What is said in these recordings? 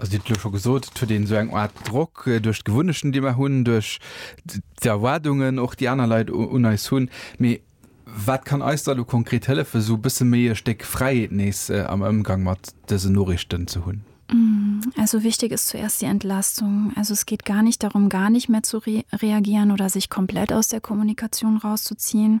Also Dir hutt elo scho gesot, et huet een esou eng Aart Drock duerch d'Gewunnechten, déi mer hunn, duerch d'Erwaardungen och, déi aner Leit un eis hunn. Mee wat kann eis da elo konkret hëllefen, esou e bësse méi e Stéck Fräiheet nees am Ëmgang mat dësen Noriichten ze hunn? Also wichtig ist zuerst die Entlastung. Also es geht gar nicht darum, gar nicht mehr zu reagieren oder sich komplett aus der Kommunikation rauszuziehen.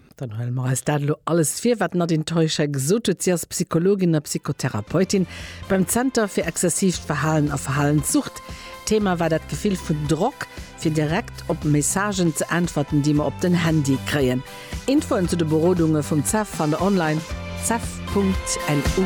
Dann hëlle mer eis dat elo alles vir, wat d'Nadine Teuscher gesot huet. Si ass Psychologin a Psychotherapeutin beim Zenter fir exzessiivt Verhalen a Verhalenssucht. Thema war dat Gefill vun Drock, fir direkt op Messagen ze äntwerten, déi mer op den Handy kréien. Infoen zu de Berodunge vum CEF fannt der online, cef.lu.